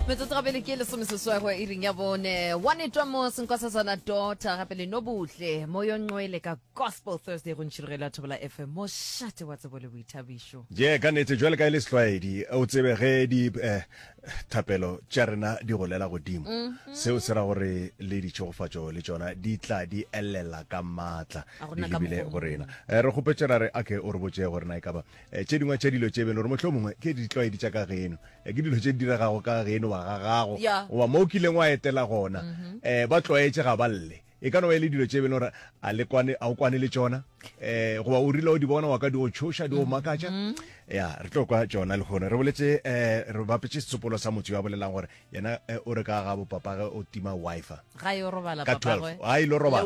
metsotso ga pele ke lesome seswego e ring ya bone one twa mo senkosasana dota gape le nobutle mo yo nqwele ka gospel thursday go ntšhirogelo ya thobola fm mo šate wa tsebo le boithabišo je ka nete jwale ka e le setlwaedi o tsebe ge di eh, thapelo tša rena di golela godimo mm-hmm. seo se ra gore le ditšhegofatšo le tšona di tla di elela ka maatla di lebile go rena eh, re kgopetšera re ake o re botše gore na e kaba Eh, tše dingwe tša dilo tše belo gore motlho mongwe ke ditlwaedi tša ka geno eh, ke dilo tše di diregago ka geno wa ga gago goba mo o kileng wa etela gona um mhm. eh, ba tlwaetse ga ba lle e ka no ba e le dilo tše belo gore a o kwane le tsona um goba o rile o di bona wa ka di go tšhoša di go makatša mhm. ya re tlo kwa tsona le gone re boletse um re bapetse setsopolo sa motho yo a bolelang gore yena o re ka ga bopapage o tima wifi ka 12 a ile robala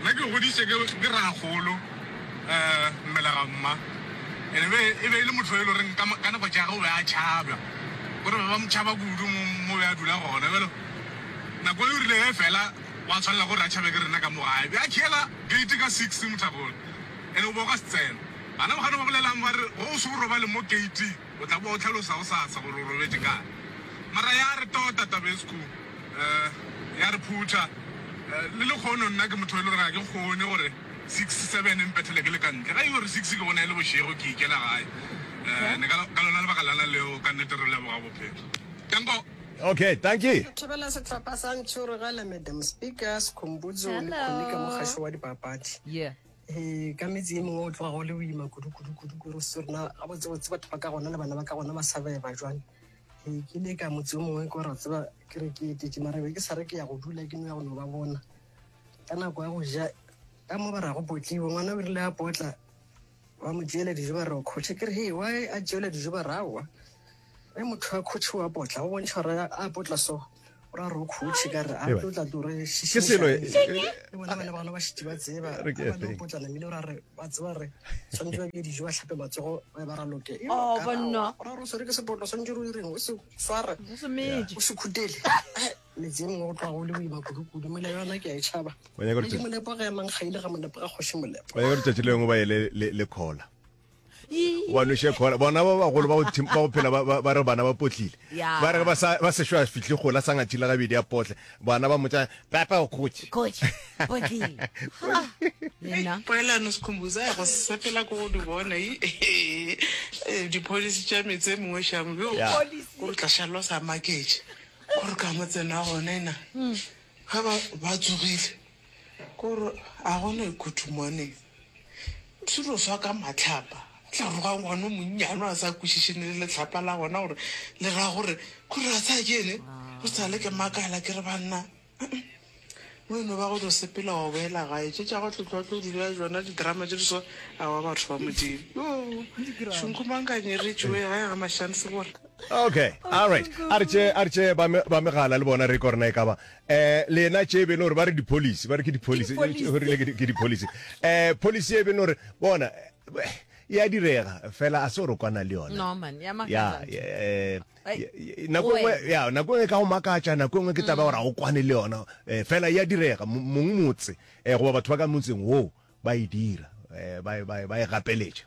Nna ke goditše ke ke rragolo mmele ga mma and e be e be e le motho yo e le goreng ka ka nako tša ge o be a tšhabja gore ba ba mo tšhaba kudu mo mo be a dula gona bjalo nako e rile ge fela wa tshwanela gore a tšhabe ke rena ka mo gae be a khela gate ka six mothakgolo and o bo o ka se tsena bana ba kgone ba bolelang ba re go o se o robale mo gate. O tla boa o hlalosa gosasa gore o robetše kae. Mara ya re tota Tabescu, eh, ya re phutha. Eh, le lekgono nna ke motho e le gore ga ke kgone gore six, seven e mpethele ke le ka ntle. Ga e gore six ke gona e le bošego ke ikela gae. Eh, ne ka, ka lona lebaka lana leo ka nnete re leboga bophelo. Danko! Okay, dankie. Re thobela sehlopha sa Ntšhurugele, Madam Speaker, Sikhumbudzo le Khulika, Mokgašo wa Dipapadi. Yeah. Ee, ka metse ye mengwe go tloga go le boima kudu-kudu-kudu kore se rona gabotsebotse batho ba ka gona le bana ba ka gona ba sa beba jwale ee ke le ka motse o mongwe ko ra tseba ke re ke etetse mara be ke sa re ke ya go dula ke no ya go no ba bona ka nako ya go ja ka mo ba ra go potliwe ngwana o rile a potla ba mo tseela dijo ba re o kgotshe ke re he wa a tseela dijo ba rawa Ge motho a khutšhe wa potla, o bontšha gore a potla so, o ra re o khutšhe ka re a Ewa. tlotla tu re Ke selo e- šišiša. e- Le bona bana bano ba šetše ba tseba Re ke a bana efeng? potla namile o ra re ba tseba gore tshwanetse ba bje dijo ba tlhape matsogo ba be ba raloke Yo, Oh, ka ra banna. wa- o ra re o swere ke sepotla tshwanetse re o direng o se sware Semeje. o se khutele Eh, metse e mengwe go tloga go le boima kudukudu mole yona ke a e tšhaba O nyaka gore Medi tšatši- molepo ga emang ga ile ga molepo ga kgoši molepo o nyaka gore tšatši lengwe ba ye le- le le kgola wa noše kgola bona ba bagolo ba go phela ba re bana ba potlile ba re ba sešo a fihle gola sa ngathile gabedi a potle bana ba motsa papa o khotse poelano sekhumbuza ya go sepela ko go di bona dipholisi tša metse mongwe šamo yo o tla šalwa sa maketše gore ka motsena gone na ga ba tsogile Kore a gona e khuthu mone selo swa ka matlhapa a tla roga ngwana o monnyane a sa kwešiše ne le letlhapa la gona gore le ra gore kore a sa kene go sa le ke makala ke re banna mo eno ba go tlo sepela wa boela gae tše tša go tlotlo tlo dira jona didrama tše di so a wa batho ba modimo yo shunkumankanyeretšoe ga ya ga mashansebora okay all right a re tše a re tše ba me ba megala le bona re kore na e ka ba Eh, le yena tše e be e le gore ba re di-policy ba re ke di-policy di-policy. o rile ke di- ke di-policy um policy e be e le gore bona eh, ya direga fela a se gore o kwana le yona No, man, ya makatsa ya ntho. eh, Ai, ya- ya- nako o engwe wena. ya nako engwe ka go makatša nako engwe ke taba gore ga o kwane le yona eh, fela ya direga mo- mong motse eh, goba batho ba ka motseng woo ba e dira eh, ba e- ba e- ba e gapeletša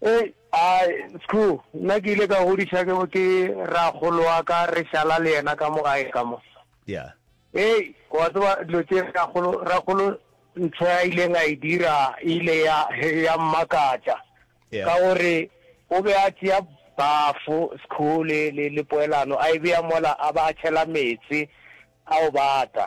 Hei, ai, Skhoo, nna ke ile ka godiša ke, ke rakgolo wa ka re šala le yena ka mo gae ka mo. Yeah. Hei, wa tseba dilo tše rakgolo, rakgolo ntho ya ileng a e dira e ile ya, ya mmakatša. Yeah. Ka gore o be a tšea bafo, Skhoo, le, le, le poelano, a e bea mola, a ba a tšhela meetse a o bata.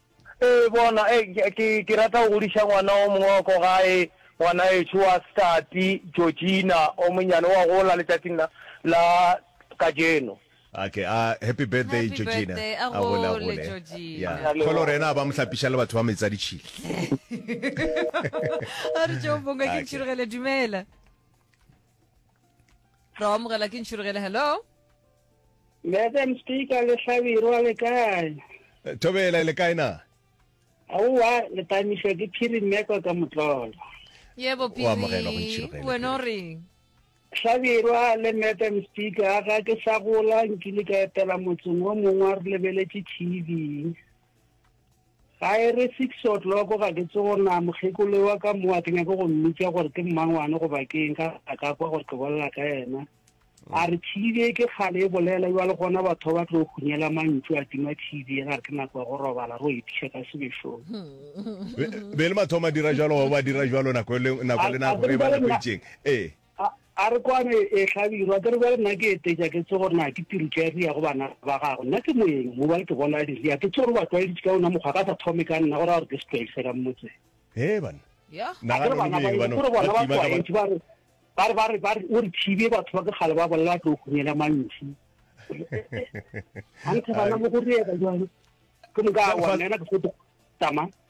Ee, bona, e, ke, ke, ke rata go godiša ngwana o mongwe wa ko gae, ngwanaetšo wa Stati, Georgina, o monnyane, o a gola letšatšing la, la kajeno. Okay, a, happy birthday, Happy Georgina. birthday, a gole, a gole, Georgina. Yeah. Kgole gore yena a ba mo hlapiša le batho ba metsi a ditšhile. A re tšeo bonga ke Okay. ntšhirogele dumela. Ra amogela ke ntšhirogele hello. Madam Speaker le Hlabirwa le kae? Eh, Thobela le kae na? Aowa le pamiswa ke phiri mmekwa ka motlolo. yebo O amogelwa go ntšhiro ge e piri le wena o reng Hlabirwa le Madam Speaker ga ke sa gola nkile ka etela motseng o mongwe wa re lebeletše TV. Ga e re six o'clock ga ke tsogo na mokgekolo wa ka mo a ke nyake go mmitša gore ke mmangwane goba ke eng ka a ka kwa gore ke bolela ka yena. A re TV e ke kgale e bolela jwale gona batho ba tlo hunyela mantšu a tima TV e ga re ke nako ya go robala ro etiša ka sebešong. Be- be le mathomo a dira jalo wa ba dira jalo nako le nako le nako e ba nako e itseng ee A, a re kwane, ee, hlabirwa, ke re bjale nna ke etetša ke tsebe gore na ke piritšo ya Ria go bana ba gagwe. Nna ke moeng, mo bale ke bola di Ria, ke tsebe gore o ba tlwaeditše ka wona mokgwa, a ka sa thome ka nna, go raya gore ke setlwaedi sa ka motseng. Hee banna, Yah. A ke re nagana le bana ba boeng eno, ke re bona ba ba tima ka ba. tlwaetše, ba re, ba re, ba re, ba re, o re thibe, batho ba ke kgale ba bolela ba tlo hunyela mantšu. Hanthe bana mo go reeba bjalo, ke moka a wa nna yena ke fo tama.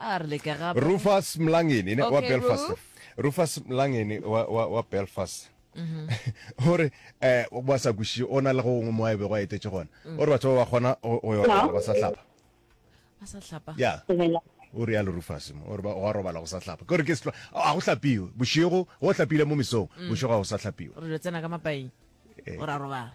a re leke gape rufus mlangeni ne wa Okay, belfast Roof. rufus mlangeni wa, wa, wa belfast o re eh ba sa kwešiše o na le go gongwe mo a bego a etetše gona o re batho ba ba kgona go go ya robala ba sa hlapa a sa hlapa ya Dumela. o re yalo rufus mo o re ba- wa robala go sa hlapa ke gore ke setlo ga go hlapiwe bošego go hlapile mo mesong bošego ga go sa hlapiwe re lo tsena ka mapaing o ra robala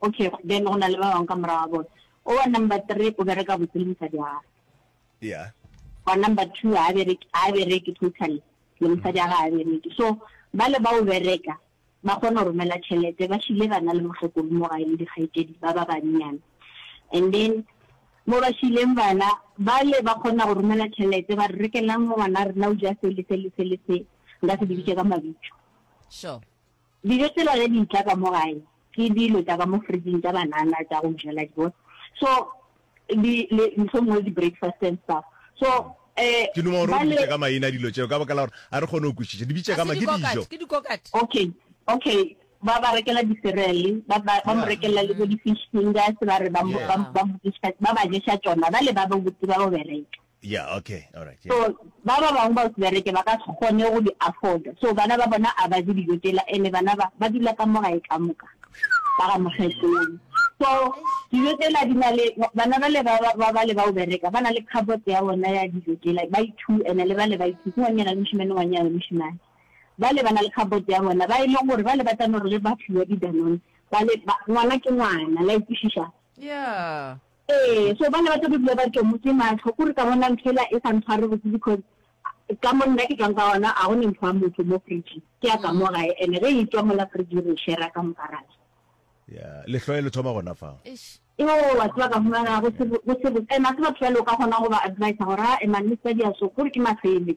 Ok, then go na le ba bangwe ka morago ga bone. O wa number three o bereka botse le mosadi wa gagwe. Yeah. Wa number two ha bereke ha bereke totally le mosadi wa gagwe ha bereke. So ba le ba o bereka ba kgona go romela tšhelete ba šile bana le motlhokolo mo gae le dikgaitedi ba ba bannyane and then mo ba šileng bana ba le ba kgona go romela tšhelete ba re rekelang ngwana rena o ja se le se le se le se nka se dibitse ka mabitso sure Dijo tsela ge di tla ka mo gae ke dilo tša ka mo fridging tša banana tša go jela ke bona so di le mohlomongwe di breakfast and stuff so eh Ke duma gore o re bitše ka maina dilo tšeo ka baka la gore a re kgone go kwešiša. Di bitše ka ma ke dijo. Okay okay ba ba rekela di cereal ba ba ba mo rekela le bo di fish fingers ba re ba ba ba ba ba ješa tšona ba le ba ba botse ba bo bereka. Yeah okay alright yeah. So ba ba bangwe ba bereke ba ka se kgone go di afforda so bana ba bona a ba je dijo tela ene bana ba ba dula ka mo gae ka moka ba ga mogetong so dijo tela di na le bana ba le ba ba le ba o bereka ba na le cupboard ya bona ya dijo tela ba ithu ene le ba le ba ithu ke ngwanyana le moshimane ngwanyana le moshimane ba le ba na le cupboard ya bona ba e leng gore ba le ba tsamaya gore le ba fiwa di-danone ba le ngwana ke ngwana la ikwešiša yeah Ee, so bana ba tlo be bile ba tšomo ke mahlo kore ka bona ntho ela e sa ntshware botse because ka mo nna ke tswang ka gona ga gone ntho ya motho mo fridge ke ya ka mo gae and ge e tswa mola fridge re shera ka mokarana ya lehloe le thoma gona fa yo wa tswa ka fumana go se go se and a se batho ba le ka gona go ba advise gore a emanne sa dia so gore ke mafele